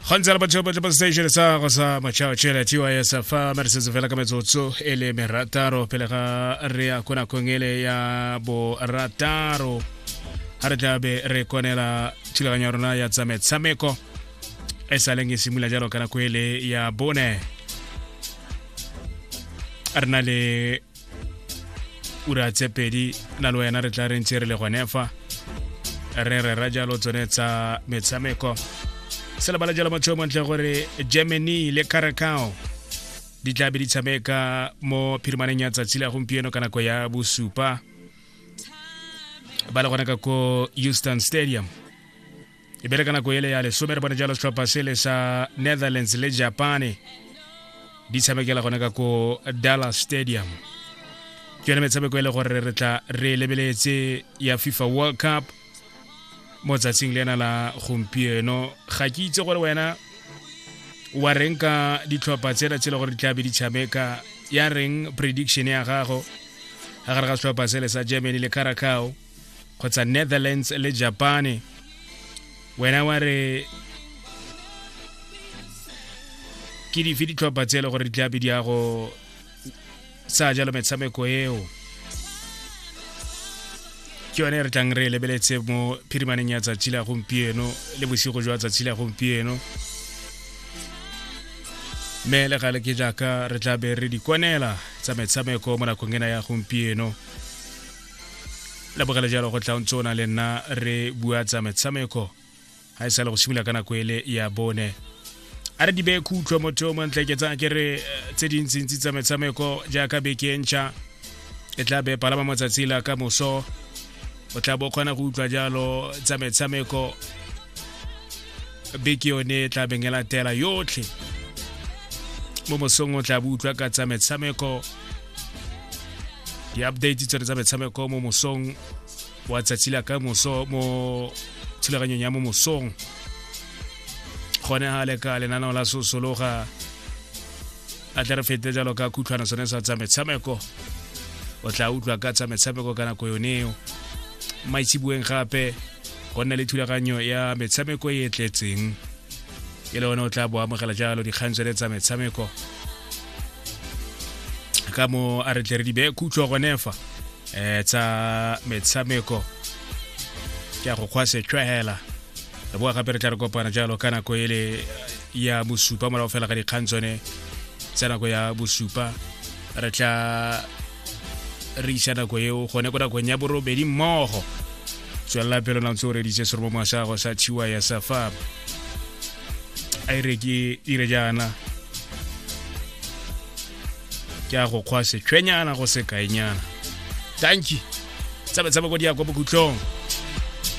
gantsi re batho ba station sa go sa matšhao tšela tys fa ma re setse fela ka metsotso e le merataro pele ga re ya ko nakong ele ya borataro ga re tla be re konela thulaganyo ya rona ya tsa metshameko e sa leng e simolola jalo ka nako ele ya bone re na le ura tse pedi na le wena re tla re ntse re le gone fa re rera jalo tsone tsa metshameko se lebala jalo motho yo montle gore germany le caracao di tla be di tshameka mo phirimaneng ya tsatsi la gompieno ka nako ya bosupa ba le gone ka ko houston stadium e bereka nako ele ya lesome re bone jalo setlhopha sele sa netherlands le japane di tshamekela gone ka ko dallas stadium ke yone metshameko e le gore re tla re lebeletse ya fifa world cup mo tsatsing le ena la gompieno ga ke itse gore wena wa reng ka ditlhopha tsena tse e le gore di tlabe di tshameka ya reng prediction ya gago ga gare ga setlhopha sele sa germany le caracao kgotsa netherlands le japane wena wa re ke dife ditlhopha tse e le gore di tlabe di ya go sa jalo metshameko eo ke yone re tlang re e lebeletse mo phirimaneng ya tsatsi la gompieno le bosigo jwa tsatsi la gompieno mme le gale ke jaaka re tla be re di kwanela tsa metshameko mo nakong ena ya gompieno la bogela jalo go tla o ntse o na le nna re bua tsa metshameko ga e sa le go simolola ka nako ele ya bone a re dibe khutlho motho o montle ke tsaya ke re eh, tse dintsintsi tsa metshameko jaaka beke e ntšha e tla be palama motsatsi la ka moso o tla bo kgona go utlwa jalo tsa metshameko beke yone e tla beng e latela yotlhe mo mosong o tla bo utlwa ka tsa metshameko di-update tsone tsa metshameko mo mosong wa tsatsi la ka moso mo thulaganyong ya mo mosong gone ga le ka lenaneo la sosologa a tla re fete jalo ka khutlhwana sone sa tsa metshameko o tla utlwa ka tsa metshameko ka nako yoneo maitshibueng gape go nna le thulaganyo ya metshameko e e tletseng e le one o tla bo amogela jalo dikgang tsone tsa metshameko ka mo a re tle re di bee khutlo gone fa um tsa metshameko ke a go kgwa setshwegela re boa gape re tla re kopana jalo ka nako e le ya bosupa morago fela ga dikgang tsone tsa nako ya bosupa re tla re isa nako eo gone ko nakong ya borobedi mmogo tswelela pelo na ntse o reditse serobo mwa sa gago sa tshiwa ya safa a e re ke dire jaana ke a go kgwa setshwenyana go sekaenyana tanki tsabetsaba ko di ya kwa bokhutlong